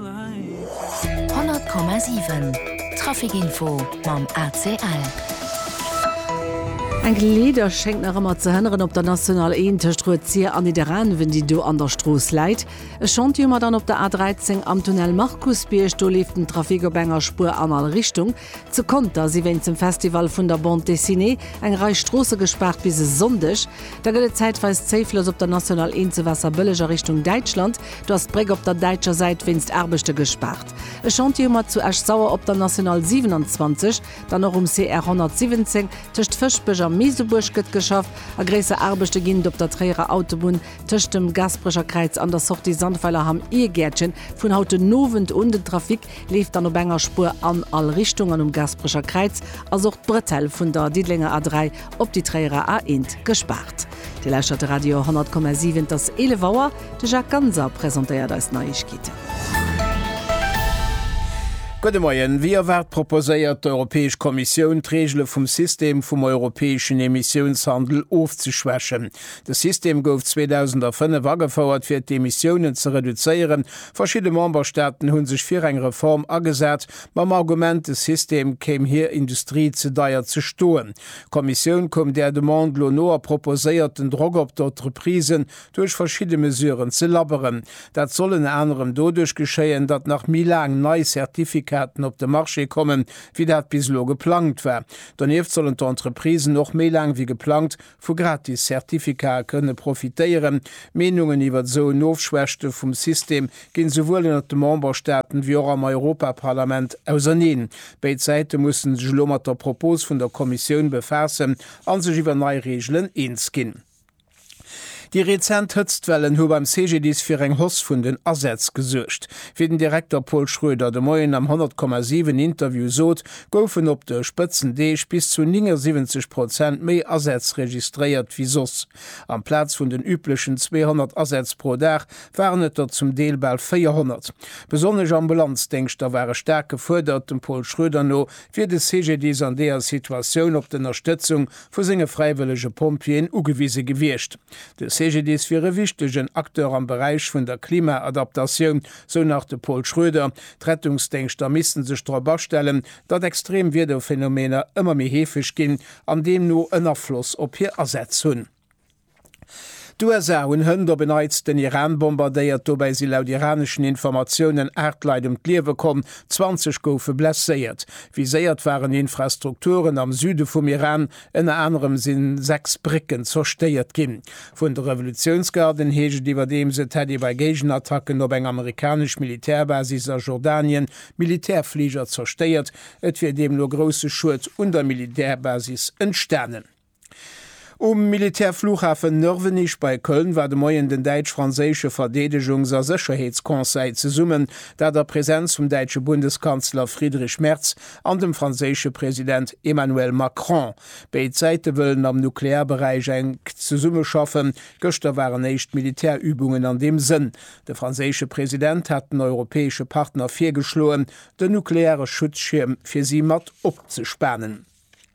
100,7 Trafic Info mam ACL. Enk Leeder schéngt nach ëmmer ze hënneren op der National 1 tëscht Rued-Sir an Nidderaanwen, déi do an der Strooss läit. E Chantier huet mer dann op der A 13 am Tunnel Markusbierg. Do leeft den Trafic op enger Spuer an all Richtung. Zu Conter si wéinst dem Festival vun der Bande Dessinée eng Rei Stroosse gespaart bis e Sonndeg. Da gëtt et zäitweis zéiflos op der National 1 zu Waasserbëlleg a Richtung Däitschland. Do ass d'Bréck op der däitscher Säit wéinst Aarbechte gespaart. E Chantier hu mer zu Esch-Sauer op der National 27. Dann och um CR 117 tëscht Fëschbech a Meesebuerg gëtt geschafft a gréisser Aarbechte ginn et op der Tréierer Autobunn tëscht dem Gasperecher Kräiz an der Sortie Sandweilerham Irgäertchen vun haut den Owend un. Den Trafic leeft dann op enger Spuer an all Richtung an um Gasperecher Kräiz ass och d'Bretelle vun der Diddelenger A3 op déi Tréierer A1 gespaart. Dir lauschtert de Radio 100,7, et ass 11 Auer, de Jacques Ganser presentéiert eis Neiegkeeten. Gudde Moien. Wéi erwaart proposéiert d'Europäesch Kommissioun, d'Reegele vum System vum europäeschen Emissiounshandel ofzeschwächen. De System gouf 2005 agefouert fir d'Emissiounen ze reduzéieren Verschidde Memberstaaten hu sech fir eng Reform agesat, mam Argument, de System kéim hir Industrie ze deier ze stoen. D'Kommissioun koum där Demande lo no a proposéiert, den Drock op d'Entreprisen duerch verschidde Mesuren ze labberen. Dat soll ënner anerem doduerch geschéien, datt nach méi laang nei Certificaten op de Marché kommen, wéi dat bis elo geplangt war. Donieft sollen d'Entreprisen och méi laang wéi geplangt Vu gratis Certificae kënne profitéieren. D'Meenungen iwwert esou en Ofschwächte vum System ginn esouwuel ënnert de Memberstaaten wéi och am Europaparlament auserneen. Béid Säite mussen sech elo mat der Propos vun der Kommissioun befaassen an sech iwwer nei Reegelen eens ginn. Déi rezent Hëtztwellen hu beim CGDIS fir eng Hoss vun den Asätz gesuergt. Wéi den Direkter Paul Schroeder de Moien am 100,7 Interview sot, goufen op de Spëtzendeeg bis zu 79 Prozent méi Asätz registréiert wéi soss. Amplaz vun den üblechen 200 Asätz pro Dag waren et der zum Deel bal 400. Besonnesch Ambulanzdéngschter ware staark gefuerdert. Dem Pol Schroeder no wier de CGDIS an deeër Situatioun op d'Ënnerstëtzung vu senge fräiwëllege Pompjeeën ugewise gewiescht. De CGDIS wier e wichtegen Acteur am Beräich vun der Klimaadaptatioun, sou nach de Pol Schroeder. D'Rettungsdéngschter misste sech drop astellen, datt extrem Wiederphenomeener ëmmer méi heefeg ginn an deemno en Afloss op hir Asätz hunn. D'USA hunn hënt op en Neits den Iran bombardéiert, dobäi si laut iraneschen Informatiounen aacht Leit ëm d'Liewe komm, 20 goufe blesséiert. Viséiert waren Infrastrukturen am Süde vum Iran, Ënner anerem si sechs Brécken zerstéiert ginn. Vun de Revolutiounsgarden heescht et iwwerdeems, et hätt ee bei Géigenattacken op eng amerikanesch Militärbasis a Jordanien Militärfliger zerstéiert. Et wier deemno grousse Schued un der Militärbasis entstanen. Um Militärflughafen Nörvenich bei Köln war de Moien den däitsch-franséische Verdeedegungs a Sécherheetsconseil zesummen, dat a Presenz vum däitsche Bundeskanzler Friedrich Merz, an dem franséische President Emmanuel Macron. Béid Säite wëllen am Nuklearberäich enk zesummeschaffen. Gëschter waren éischt Militärübungen an deem Sënn. De franséische President hat den europäesche Partner virgeschloen, den nukleare Schutzschierm fir si mat opzespanen.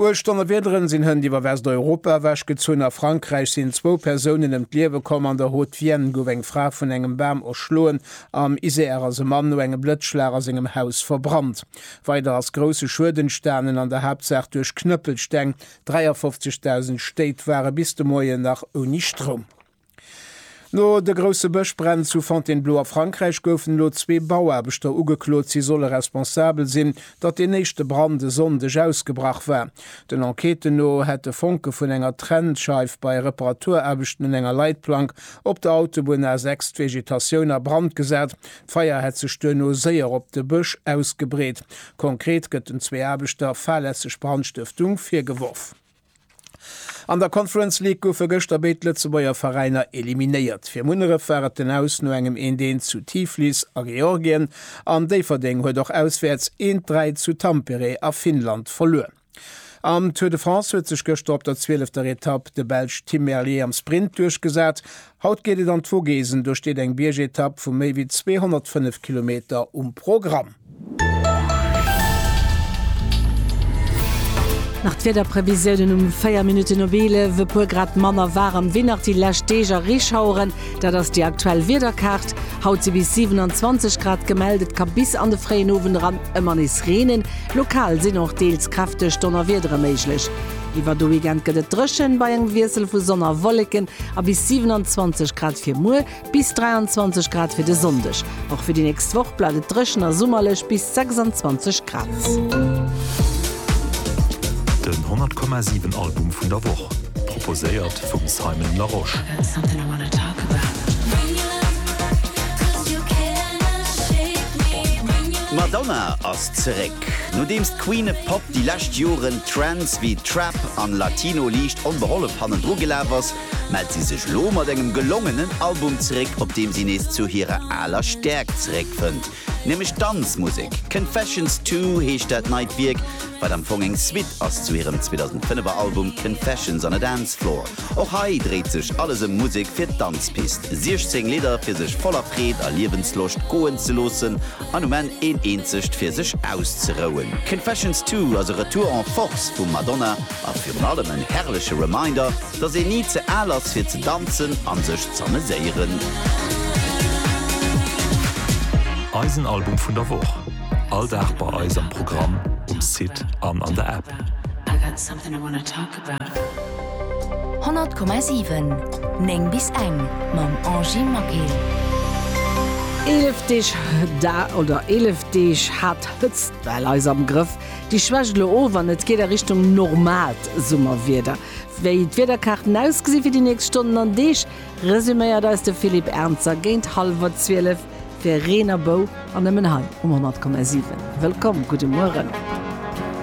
Uecht Donnerwiederen sinn hënt iwwer Westeuropa ewech gezunn. A Frankräich sinn zwou Persounen ëm d'Liewe komm. An der Haute-Vienne gouf eng Fra vun engem Bam erschloen. Am Isère ass e Mann no engem Blëtzschlag a sengem Haus verbrannt. Weider ass grousse Schued entstanen, an der Haaptsaach duerch Knëppelsteng. 53.000 Stéit ware bis de Moien nach ouni Stroum. No de grousse Bëschbränn zu Fontainebleau a Frankräich goufen elo zwee Bauaarbechter ugeklot. Si solle responsabel sinn, datt deen éischte Brand e Sonndeg ausgebrach war. Den Enquêten no hätte Fonke vun enger Trennscheif bei Reparaturaarbechten un enger Leitplank op der Autobunn A6 d'Vegetatioun a Brand gesat. D'Feier hätt sech duerno séier op de Bësch ausgebreet. Konkret gëtt den zwee Aarbechter fahrlässeg Brandstëftung virgeworf. An der Conference League goufe gëschter béid Lëtzebuerger Veräiner eliminéiert. Fir Munneref war et den Aus no engem 'Eent Eent' zu Tiflis a Georgien an Déifferdeng huet och auswäerts 'Eent Dräi' zu Tampere a Finnland verluer. Am Tour de France huet sech gëschter op der zwielefter Etapp de Belsch Tim Merlier am Sprint duerchgesat Haut geet et an d'Vogesen, do steet eng Biergetapp vu méi wéi 205 Kilometer um Programm. Nach d'Wiederprevisiounen um 4 Minutten op 11, e puer Grad manner waarem wéi nach déi lescht Deeg a Reeschaueren. Dat ass déi aktuell Wiederkaart. Haut si bis 27 Grad gemellt, et ka bis an de fréien Owend eran ëmmer nees reenen. Lokal sinn och deels kräfteg Donnerwiedere méiglech. Iwwer de Weekend gëtt et dréchen, bei engem Wiessel vu Sonn a Wolleken, a bis 27 Grad fir muer, bis 23 Grad fir de Sonndeg. Och fir déi nächst Woch bleift et dréchen a summerlech, bis 26 Grad. Den 100 Komma 7 Album vun der Woch, proposéiert vum Simon Larosche. D'Madonna ass zeréck! Nodeems d'Queen of Pop déi lescht Joren Trends wéi Trap an Latino liicht onbehollef hannendru gelaf ass, mellt si sech lo mat engem gelongenen Album zeréck, op deem si nees zu hirer aler Stäerkt zeréckfënnt, nämlech d'Danzmusek. Confessions Two heescht dat neit Wierk, wat am Fong eng Suite ass zu hirem 2005er Album Confessions on a Dance Floor. Och hei dréit sech alles ëm Musek fir d'Danzpist, 16 Lidder fir sech voller Freed a Liewensloscht goen ze loossen An um Enn een eenzegt fir sech auszerouen. Confessions Two ass e Retour en Force vum Madonna a virun allem en herrleche Reminder, dass een ni ze al ass fir ze danzen an sech z'ameséieren. Eisen Album vun der Woch, all Dag bei eis am Programm, um Site an an der App. 100,7 9 bis eng mam Angie Maquil. Eelef Deeg da, oder eelef Deeg hat d'Hëtztwell eis am Grëff. Déi schwächt elo of an et geet a Richtung normaalt Summerwieder. Wéi d'Wiederkaarten ausgesi fir déi nächst Stonnen an Deeg, resuméiert eis de Philippe Ernzer géint hallwer zwielef fir Reen a Bou an nëmmen hei um 100,7. Wëllkomm, gudde Mueren.